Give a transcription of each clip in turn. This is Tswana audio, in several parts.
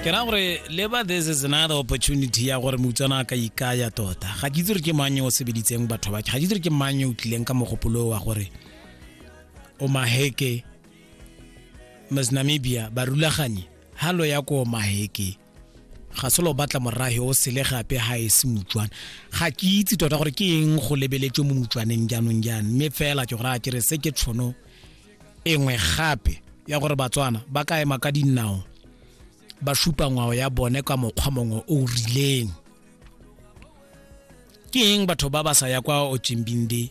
ke ra gore labor this is another opportunity ya gore moutswana a ka ikaya tota ga ke itse gore ke mang o sebeditseng batho ba ga ke itse gore ke mang o tlileng ka mogopolo wa gore o maheke mas namibia ba rulaganye halo ya ko maheke ga selo batla morage o sele gape ga e se motswana ga ke itse tota gore ke eng go lebeletswe mo motswaneng jaanong jang mme fela ke gore a kere se ke tshono engwe gape ya gore batswana ba ka ema ka dinao ba supa ngwao ya bone ka mokgwa mongwe o rileng ke eng batho ba ba sa ya kwa ochimbinde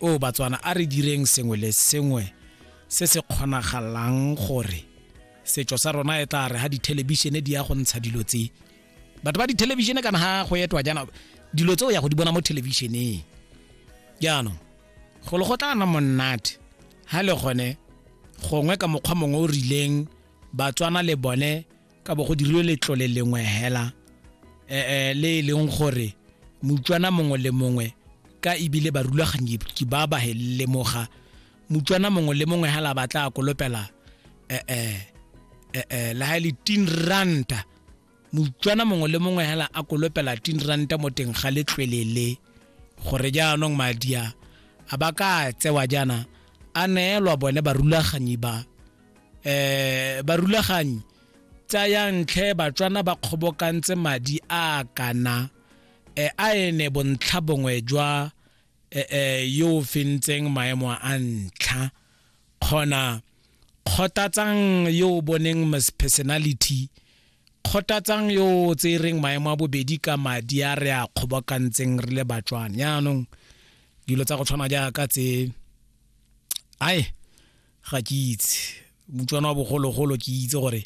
o batswana a re direng sengwe le sengwe se se kgonagalang gore setso sa rona e tla re ha dithelebishene di ya go ntsha dilo tse batho ba dithelebishene kana ha go etwa jaana dilo tse o ya go di bona mo thelebišeneng jaanong golo go tla na monate ha le gone gongwe ka mokgwa mongwe o rileng batswana le bone ka bo go dirilwe letlole lengwe hela eh le e leng gore mutswana mongwe le mongwe ka ebile barulaganyi ke ba ba lemoga mutswana mongwe le mongwe hela ba tla kolopela eh eh eh la hile tin ranta mutswana mongwe le mongwe hela a kolopela tin ranta mo teng ga letlwele le gore jaanong madia a ba ka tsewa jaana a neelwa bone barulaganyi ba eh barulaganyi tsaya ntlhe batswana ba kgobokantse madi a kana e a ene bontlha bongwe jwa e, e, yo o fentseng maemo a ntlha kgona kgotatsang yo o boneng personality kgotatsang yo o tsereng maemo a bobedi ka madi a re a kgobokantseng re le batswana yaanong dilo tsa go tshwana jaaka tse ai ga ke itse motswana wa bogologolo ke itse gore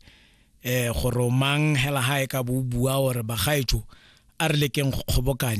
um gore mang hela ga e ka bo o bua gore bagaetso a re lekeng go kgobokanya